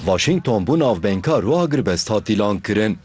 Washington bû navbengka ro agirbest hat dîlankirin.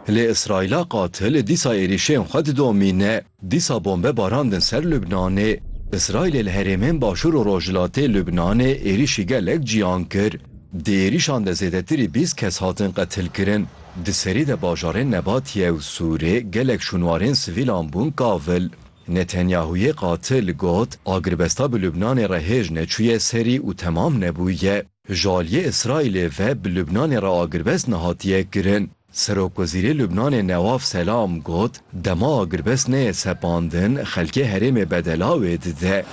Lê Îsraîla qatil li dîsa êrîşên xwe didomîne. Dîsa bombe barandin ser Lubnanê. Îsraîlê li herêmên başûr û rojhilatê Lubnanê êrîşî gelek ciyan kir. Di êrîşan de zêdetirî bîst kes hatin qetilkirin. Di serî de bajarên Nebatiye û Sûrê gelek şûnwarên sivîlan bûn kavil. Netanyahûyê qatil got, Agirbesta bi Lubnanê re hêj neçûye serî û temam nebûye. Ji aliyê Îsraîlê ve bi Lubnanê re agirbest nehatiye kirin. Serokwezîrê Lubnanê Newaf Selam got, Dema agirbest neyê sepandin, xelkê herêmê bedela wê dide.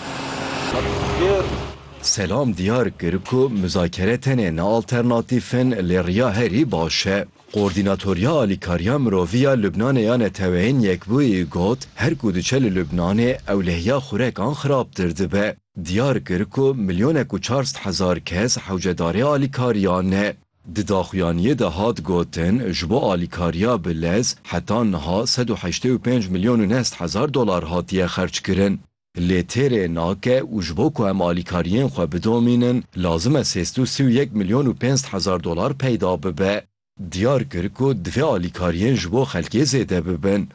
Selam diyar kir ku muzakere tenê ne alternatîf in lê riya herî baş e. Koordînatoriya Alîkariya Mirovî ya Lubnanê ya Neteweyên Yekbûyî got, Her ku diçe li Lubnanê ewlehiya xurekan xirabtir dibe. Diyar kir ku milyonek û çar sed hezar kes hewcedarê alîkariya ne. Di daxuyaniyê de hat gotin, ji bo alîkariya bi lez heta niha sed û heştê û pênc milyon û neh sed hezar dolar hatiye xerckirin. Lê têrê nake û ji bo ku em alîkariyên xwe bidomînin lazim e sêst û sî û yek milyon û pênc sed hezar dolar peyda bibe. Diyar kir ku divê alîkariyên ji bo xelkê zêde bibin.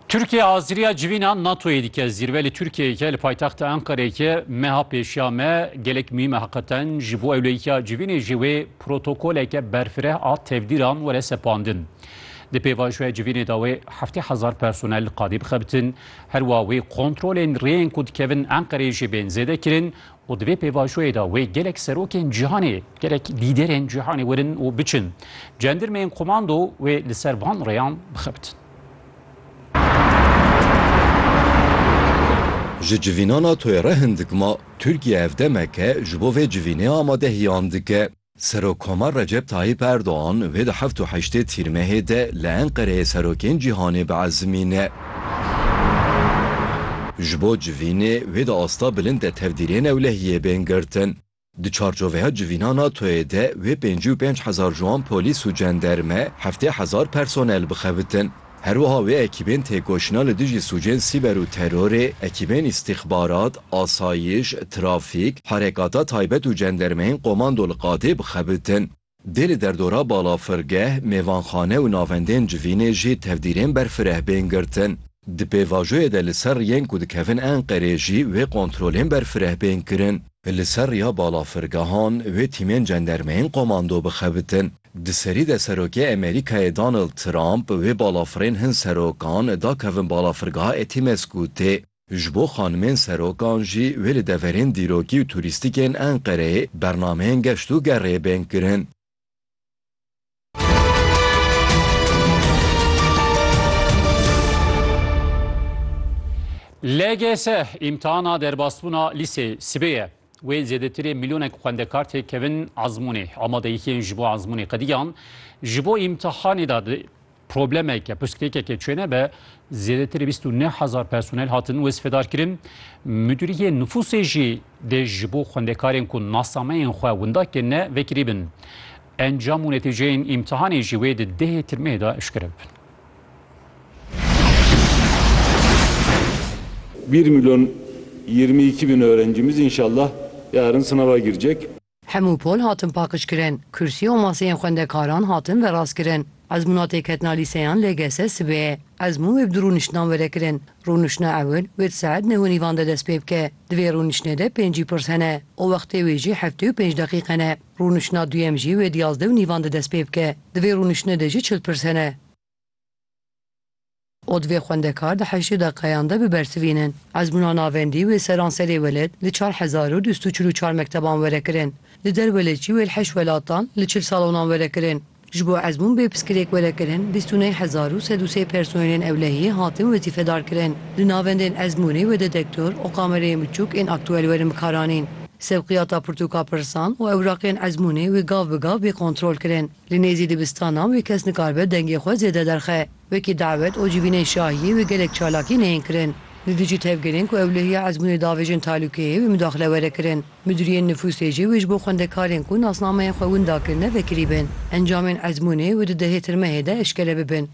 Tirkiye haziriya civîna NATO'yê dike. Zîrve li Tirkiyeyeke li paytexta Enqereyeke meha pêşiya me gelek muhîm e heqeten. Ji bo ewleyikiya civînê jî wê protokoleke berfireh a tevdîran were sepandin. Di pêvajoya civînê de wê heftê hezar personel li qadê bixebitin, her wa wê kontrolên rêyên ku dikevin Enqereyê jî bên zêdekirin û di vê pêvajoyê de wê gelek serokên cîhanê, gelek lîderên cîhanê werin û biçin. Cendirmeyên komando wê li ser van rêyan bixebitin. Ji civîna NATO'yê re hin dikma, Tirkiye ev demeke ji bo vê civînê amadehiyan dike. Serokomar Recep Tayyip Erdogan vê di heft û heştê Tîrmehê de li Enqereyê serokên cîhanê biezimîne. Ji bo civînê wê di asta bilind de tevdîrê newlehiyê bên girtin. Di çarçoveya civîna NATO'yê de wê pêncî û pênc hezar ji wan polîs û cenderme, heftê hezar personel bixebitin. Herwiha wê ekîbên têkoşîna li dijî sûcên sîber û terorê, ekîbên îstîxbarat, asayiş, trafîk, herekata taybet û cendermeyên komando li qadê bixebitin. Dê li derdora balafirgeh, mêvanxane û navendên civînê jî tevdîrên berfireh bên girtin. Di pêvajoyê de li ser riyên ku dikevin Enqerê jî wê kontrolên berfireh bên kirin. Li ser riya balafirgehan wê tîmên cendermeyên komando bixebitin. Di serî de Serokê Amerîkayê Donald Trump wê balafirên hin serokan da kevin balafirgeha Etimesgûtê. Ji bo xanimên serokan jî wê li deverên dîrokî û turîstîkên Enqereyê bernameyên geşt û gerê bên kirin. LGS, îmtihana derbasbûna lîseyê, sibê ye. Wê zêdetirê milyonek xwendekar tê kevin ezmûnê. Amadeyîhiyên ji bo ezmûnê qediyan. Ji bo îmtihanê de di problemeke pirsgirêkeke çê nebe, zêdetirê bîst û neh hezar personel hatin wezîfedarkirin. Mudîriyê nifûsê jî dê ji bo xwendekarên ku nasameyên xwe winda kirine vekirî bin. Encam û netîceyên îmtihanê jî wê di dehê tirmehê de eşkere bibin. Bir milyon yirmi iki bin öğrencimiz inşallah yarın sınava girecek. Hemû pol hatin paqijkirin, kursî û maseyên xwendekaran hatin verastkirin. Ezmûna têketina lîseyan LGS sibê ezmûn wê bi du rûniştinan were kirin. Rûniştina ewil wê di saet neh û nîvan de dest pê bike. Di vê rûniştinê de pêncî pirs hene û wextê wê jî heftê û pênc deqîqe ne. Rûniştina duyem jî wê di yazdeh û nîvan de dest pê bike. Di vê rûniştinê de jî çil pirs hene. Û divê xwendekar di heştê deqeyan de bibersivînin. Ezmûna navendî wê seranserê welêt li çar hezar û du sed û çil û çar mekteban were kirin. Li der welêt jî wê li heşt welatan li çil salonan were kirin. Ji bo ezmûn bê piskilêk were kirin, bîst û neh hezar û sed û sê personelên ewlehiyê hatin wezîfedar kirin. Li navendên ezmûnê wede dektor û kamereyên biçûk ên aktuel werin bikaranîn. Sevqiyata pirtûka pirsan û ewraqiyên ezmûnê wê gav bi gav bê kontrol kirin. Li nêzî dibistanan wê kes nikaribe dengê xwe zêde derxe. Wekî dawet û civînên şahiyê wê gelek çalakiyên heyên kirin. Li dijî tevgerên ku ewlehiya ezmûnê davêjin talûkeyê wê mudaxile were kirin. Midûriyên nifûsê jî wê ji bo xwendekarên ku nasnameyên xwe winda kirine vekirî bin. Encamên ezmûnê wê di dehê tirmehê de eşkere bibin.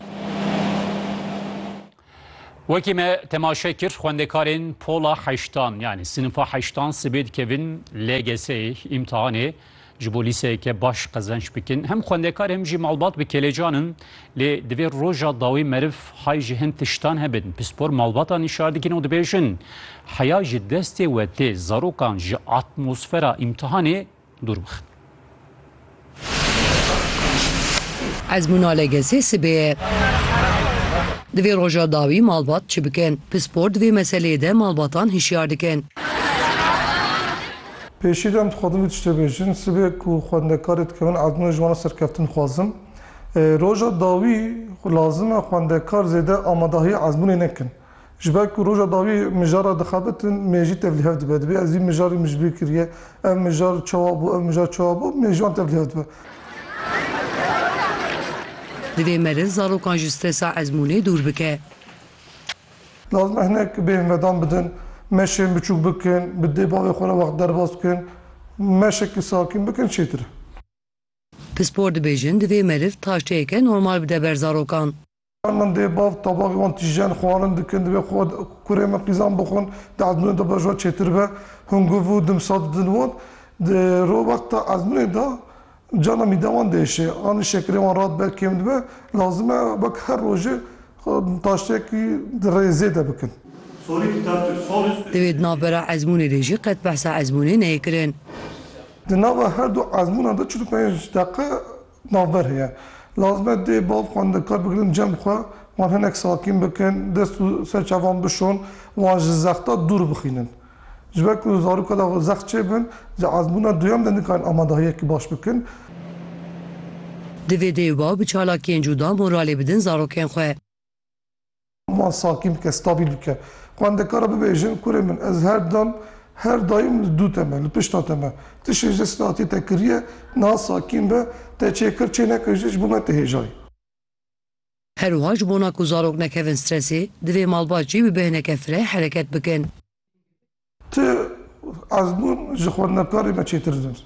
Wekî me temaşe kir xwendekarên pola heştan yanî sinifa heştan sibê dikevin LGS'ê, îmtihanê ji bo lîseyeke baş qezenç bikin. Hem xwendekar hem jî malbat bi kêlecan in. Lê divê roja dawî meriv hay ji hin tiştan hebin. Pispor malbatan îşar dikin û dibêjin heya ji destê we tê zarokan ji atmosfera îmtihanê dûr bixin. Ezmûna LGS'ê sibê ye. Divê roja dawî malbat çi bikin? Pispor di vê meseleyê de malbatan hişyar dikin. Pêşî de em dixwazin vê tiştê bêjin, sibê ku xwendekarê dikevin ezmûna ji wan re serkeftin dixwazin. Roja dawî lazim e xwendekar zêde amadahî ezmûnê nekin. Ji ber ku roja dawî mijar re dixebitin, mêjî tev li hev dibe. Dibê ez vî mijarî min ji bîr kiriye, ev mijar çawa bû, ev mijar çawa bû, mêjî wan tev li hev dibe. Divê meriv zarokan ji stresa ezmûnê dûr bike. Lazim e hinek bêhn vedan bidin, meşên biçûk bikin, bi dê bavê xwe re wext derbas bikin, meşekî sakîn bikin çêtir e. Pispor dibêjin divê meriv taşteyeke normal bide ber zarokan. Her min dê bav tabaqê wan tîjen, xwarin dikin, divê xwe kurê min qîzan bixwin, di ezmûnê de bejwa çêtir be. Hûn guv û dimsa didin wan. Di ro wexta ezmûnê de Carna mîda wan diêşe anî şekerê wan ra dibe kêm dibe, lazim e wek her rojê taştêyekî di rê zêde bikin. Di vê di navbera ezmûnê de jî qet behsa ezmûnê neyê kirin. Di nava her du ezmûnan de çil û pênc deqe navber heye. Lazim e dê bav xwendin kar bigirin cem xwe wan hinek sakîn bikin, dest û ser çavan bişon, wan ji zexta dûr bixînin. Ji ber ku zaroka da xwe zext çêbin, di azmûna duyem de nikarin amadahiyekî baş bikin. Divê dê û bav bi çalakiyên cuda moralê bidin zarokên xwe. Wan sakin bike, stabîl bike. Xwendekara bibêjin, kurê min, ez her dem, her daîm li dû te me, li pişta te me. Tiştên ji destê datiyê te kiriye, niha sakin be, te çêkir, çênekir jî ji bo me tihêjayî. Her wiha ji bona ku zarok nekevin stresê, divê malbat jî bi bêhneke fireh hereket bikin. Tu ez bûn ji xwendinkarê me çêtir dibin.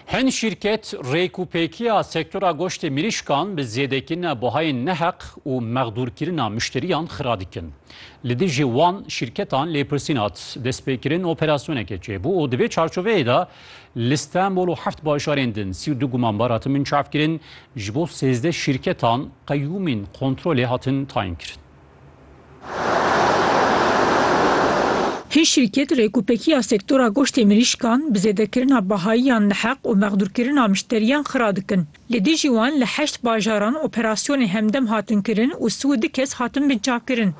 Hin şîrket rêk û pêkiya sektora goştê mirîşkan bi zêdekirina buhayên neheq û mexdûrkirina muşteriyan xira dikin. Li dijî wan şîrketan lêpirsîn hat destpêkirin operasyoneke çêbû û di vê çarçoveyê de li Stenbol û heft bajarên din sî û du gumanbar hatin binçavkirin, ji bo sêzdeh şîrketan qeyûmên kontrolê hatin tayinkirin. Hê şîrket Rêkûpekiya Sektora Goştê Mirîşkan bi zêdekirina bahayiyan li heq û mexdûrkirina mişteriyan xira dikin. Li dijî wan li heşt bajaran operasyonê hemdem hatin kirin û si û du kes hatin binçavkirin.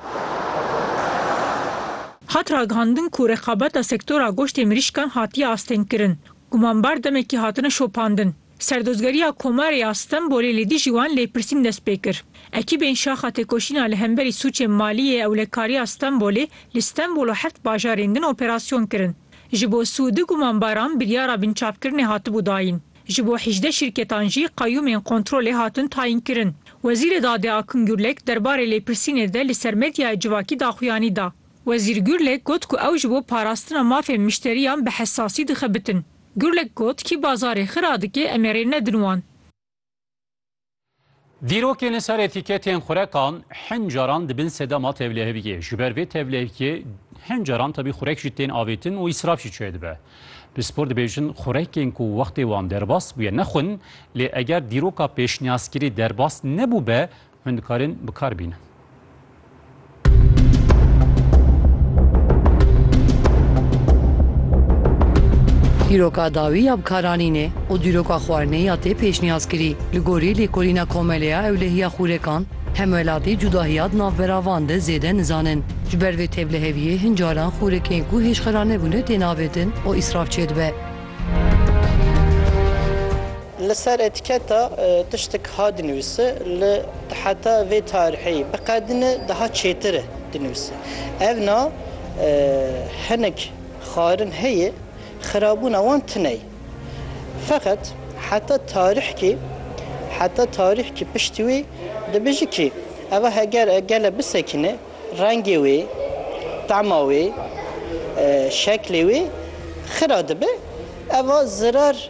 Hat ragihandin ku reqabeta sektora goştê mirîşkan hatiye astengkirin Gumanbar demekî hatine şopandin. Serdozgeriya Komarê ya Stenbolê li dijî wan lêpirsîn dest pê kir. Ekîbên Şaxa Têkoşîna li hemberî sûcên malî yê ewlekariya Stenbolê li Stenbol û heft bajarên din operasyon kirin. Ji bo si û du gumanbaran biryara binçavkirinê hatibû dayîn. Ji bo hîjdeh şîrketan jî qeyûmên kontrolê hatin tayînkirin. Wezîrê Dadê Akın Gürlek derbarê lêpirsînê de li ser medyayê civakî daxuyanî da. Wezîr Gurlek got ku ew ji bo parastina mafên mişteriyan bi hesasî dixebitin. Gurlek got, Kî bazarê xira dike em ê rê nedin wan. Dîrokên li ser etîketên xurekan hin caran di bin sedema tevliheviyê. Ji ber vê tevliheviyê hin caran tevî xurek jî tên avêtin û îsraf jî çêdibe. Pispor dibêjin xurekên ku wextê wan derbas bûye ne xwin lê eger dîroka pêşniyazkirî derbas nebûbe Hûn dikarin bi kar bînin. Dîroka dawî ya bikaranînê û dîroka xwarinê ya tê pêşniyaz kirî. Li gorî lêkolîna Komele ya Ewlehiya Xûrekan, hemwelatî cudahiya di navbera van de zêde nizanin. Ji ber vê tevliheviyê hin caran xûrekên ku hêjxera nebûne têne avêtin û îsraf çêdibe. Li ser etiketa tiştek ha dinivîse li di heta vê tarîhê biqedine daha çêtir e dinivîse. Ev na hinek xwarin heye xirabûna wan tune ye. Feqet heta tarîhkê heta tarîhkê piştî wê dibêje kî eva heger e gele bisekine rengê wê, tema wê, şeklê wê xira dibe eva zirar.